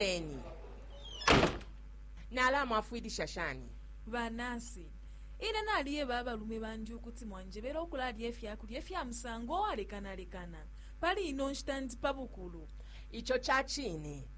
Moneni, nalamwafwilisha shani? Ba nasi, Ine naliyeba abalume bandi ukuti mwanjebele ukulalya ifya kulya ifya musango uwalekanalekana. Pali ino nshita ndi pa bukulu. Ico ca cine.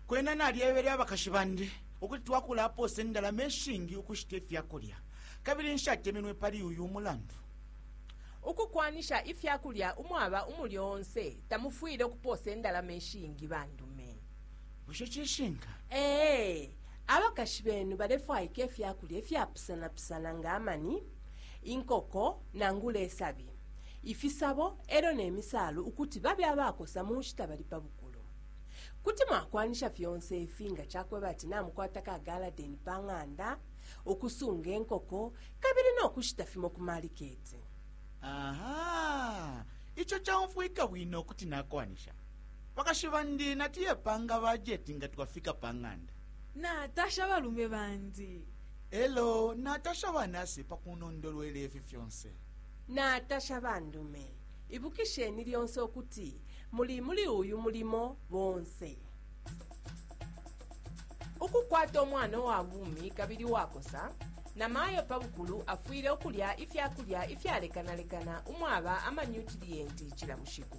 Kwena nalyebele abakashi bandi ukuti twakulapoosa indalama ishingi ukushita ifya kulya, kabili nshatemenwe pali uyu mulandu. Ukukwanisha ifya kulya umwaba umulyo onse. Tamufwile ukupoosa indalama ishingi bandume. Bushe cishinka? Ee. Abakashi benu balefwaika ifya kulya ifyapusanapusana nga amani, inkoko, nangula isabi, ifisabo e lyo ne misaalu ukuti babe abakosa mu nshita bali pa bukulu. Kuti mwakwanisha fyonse ifi nga ca kweba ati namukwata ka galadeni pa ng'anda, ukusunga inkoko, kabili no kushita fimo ku maliketi. aha ico caumfwika bwino kuti nakwanisha bakashi bandi natiye panga bajeti nga twafika pa ng'anda natasha balume bandi elo natasha banasi pa kunondolwela ifi fyonse natasha bandume ibukisheni lyonse ukuti muli muli uyu mulimo bonse Ukukwata umwana uwa bumi kabili uwakosa, namayo pa bukulu afwile ukulya ifya kulya ifyalekanalekana umwaba amanyutiliyenti cila bushiku.